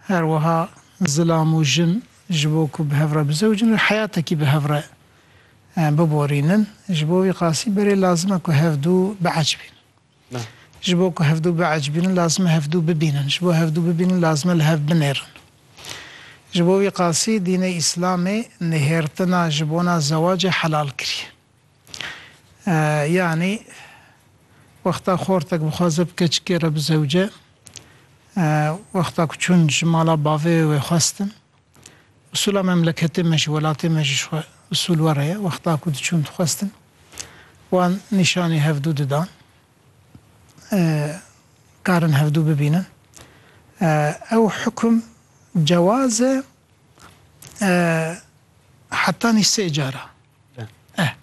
Her wiha zilam û jin ji bo ku bi hev re bizewicin û heyatekî bi hev re biborînin, ji bo wî qasî berê lazim e ku hevdû biecbînin. Ji bo ku hevdû biecbînin lazim e hevdû bibînin, ji bo hevdû bibînin lazim e li hev binêrin. Ji bo wî qasî dînê Îslamê nihêrtina ji bona zewacê helal kiriye. Yanî wexta xortek bixwaze bi keçikê re bizewce, wexta ku çûn ji mala bavê wê wê xwestin. Usûla memleketê me jî, welatê me jî ji xwe usûl were ye. Wexta ku diçûn dixwestin, wan nîşanî hevdû didan. Karin hevdû bibînin. Ew hukum cewaz e Hetanî sê cara eh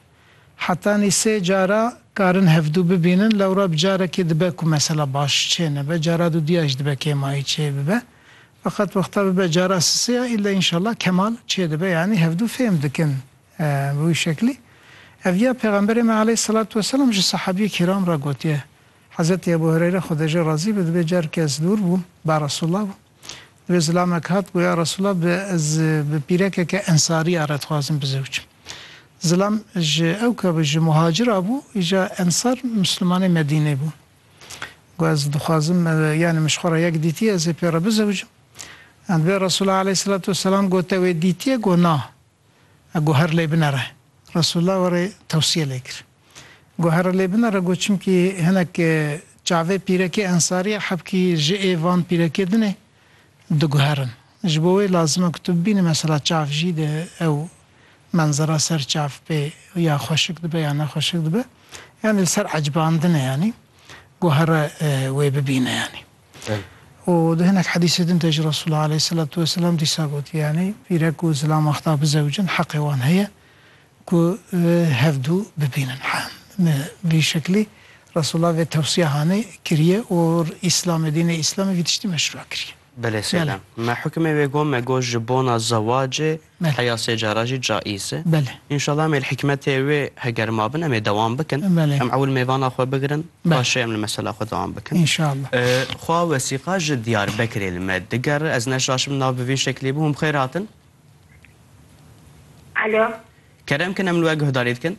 hetanî sê cara karin hevdu bibînin lewra bi carekê dibe ku mesela baş çê nebe cara dudiya jî dibe kêmayî çê bibe feqet wexta bibe cara sisêya îlle înşela kemal çê dibe yanî hevdu fêm dikin bi wî şeklî ev ya pêxemberê me aleyhîsselatu weselam ji sehabîyê kîram re gotiye Hezetî Ebû Hureyre xwedejê razî be di bê careke ez dûr bûm ba Resûllabûm. Divê zilamek hat goya Resûla bi ez bi pîrekeke ensarî a re dixwazim bizewicim. Zilam ji ew ka bi ji muhacir a bû, îja ensar mislimanê Medînê bûn. Got ez dixwazim yanî min ji xwe re yek dîtiye ez ê pê re bizewicim. Divê Resûla aleyhîsselatu weselam gote wê dîtiye? Got na. A guher lê binere. Resulullah warê tewsiye lê kir. Guhere lê binere got çimkî hinek çavê pîrekê ensarî ye hebkî ji ê van pîrekê din ê diguherin. Ji bo wê lazim e ku tu bibînî mesela çav jî di ew menzera ser çav pê ya xweşik dibe ya ne xweşik dibe. Yanî li ser ecbandin e yanî guhere wê bibîne yanî. Û di hinek hedîsê din de jî Resûlullah aleyhîsselatu weselam dîsa gotiye yanî vîrek ku zilam axta bizewicin heqê wan heye ku hevdû bibînin. Bi vî şeklî Resûlullah vê tewsiya hanê kiriye û Îslamê, dînê Îslamê vî tiştî meşrûa kiriye. Belê selam. Me hukmê wê got, me got ji bona zewacê Belê. Heya sê cara jî caîz e. Belê. Înşallah em ê li hikmetê wê heger mabin em ê dewam bikin. Belê. Em ewil mêvana xwe bigirin paşê em li mesela xwe dewam bikin. Înşallah. Xwa wesîqa ji Diyarbekirê li me digere. Ez neşaşim nav bi vî şeklî bû. Hûn bi xêr hatin. Alo. Kerem kin em li we guhdarî dikin.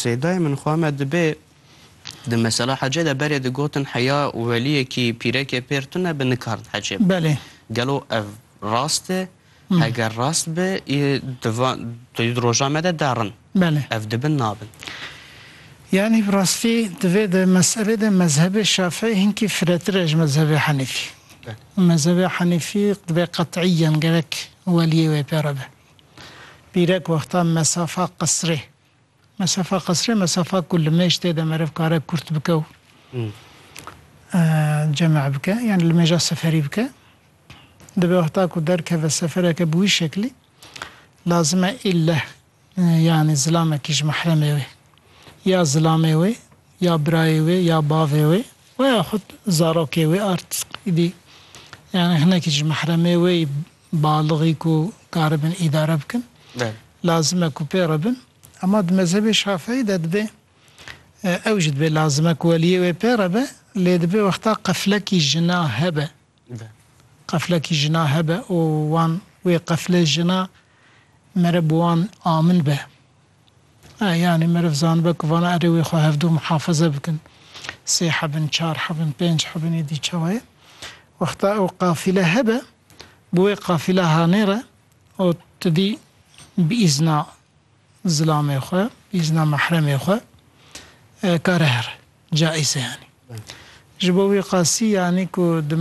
Seydayê min xwe me dibê di mesela hecê de berê digotin heya weliyekî pîrekê pêr tune bi nikard hecê be. Belê. Gelo ev rast e? Heger rast be ê di van di roja me de derin. Belê. Ev dibin nabin. Yanî bi rastî divê di meselê de mezhebê şafîî hinkî firetir e ji mezhebê henîfî. Belê. Mezhebê henîfî divê qet'îyan gerek weliyê wê pê re be. Pîrek wexta mesafa qisrê. Mesafa qisrê mesafa ku li mêj tê de meriv kare kurt bike û ceme bike yanî li mêja seferî bike. Divê wexta ku derkeve sefereke bi wî şeklî lazim e îlle yanî zilamekî ji mehremê wê ya zilamê wê ya birayê wê ya bavê wê weya xwed zarokê wê art îdî yanî hinekî ji mehremê wê balixî ku karibin îdare bikin lazim e ku pê re bin ema di mezhebê şafeî de dibê ew jî dibê lazim e ku weliyê wê pê re be lê dibê wexta qeflekî jina hebe qeflekî jina hebe û wan wê qeflê jina mere bi wan amin be. Yanî meriv zanibe ku vana erê wê xwe hevdû mihafeze bikin. Sê hebin, çar hebin, pênc hebin êdî çawa ye. Wexta ew qafîle hebe, bi wê qafîla hanê re û tu dî bi îzna zilamê xwe, bi îzna mehremê xwe kare here. Caiz e yanî. Ji bo wî qasî yanî ku di